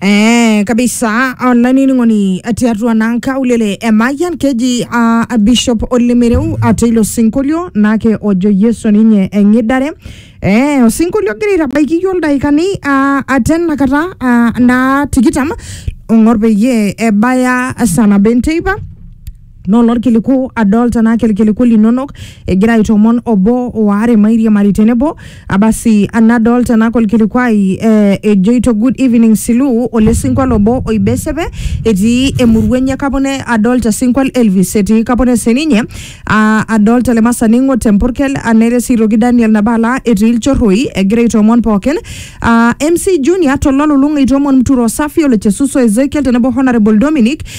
Eh, kabisa olainining'oni tiatua naa nkaulele emayian keji uh, bishop olemereu ate ilo sinkolio naake ojo yesu ninye eng'idare eh, osinkolio ogira aitabaiki yiok ildaikani uh, ate nakata uh, naa tikitam ong'or peyie ebaya saa nabo enteipa naa olorkiliku adol tenaa kelkiliku linonok egira aitomon obo waare mairiamari tenebo abasi nadol tenaa kolkilikuai eh, ejoito good evening Silu ole sinkwal obo oibesepe etii emurua enye Kapone adol te sinkwal Elvis etii Kapone sininye ah, adol tele masani ng'o te Mpurkel ah, nere sii aitoki Daniel Nabala etii Ilchorroi egira aitomon pookin ah, MC Junior tololulung'a eitomon Mturo Safi ole Chesuso Ezekiel tenebo Honourable Dominic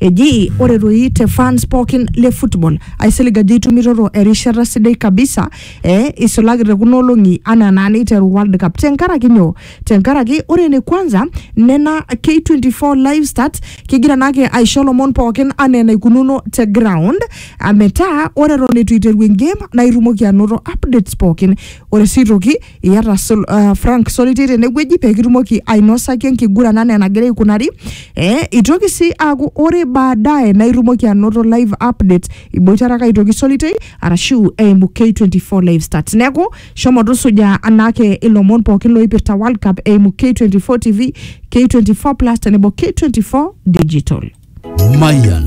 Eji ore doi te fans pookin le football aisilig ajo itumitoto erishata sidai kabisa eh, isulaki te kuna olong'i anaa naa neiteru World Cup. Tenkaraki nyoo? Tenkaraki ore ene kwanza nena K24 live stats kigira naake aisho lomon pookin anaa enaikununo te ground ah, metaa ore eton eitu eiteru engame naa itumoki anoto updates pookin Ore sii aitoki iyata sol, uh, Frank Solitei tenewueji pee kitumoki ainosaki enkiguran anaa enagira aikunari eh, itoki sii aaku ore baadaye naa itumoki anoto live update iboitare ake aitoki Solitei arashu eimu K24 live stats neeku shomo tusuja anaake ilomon pookin looipirta World Cup eimu K24 TV, K24 Plus tenebo K24 Digital. Mayan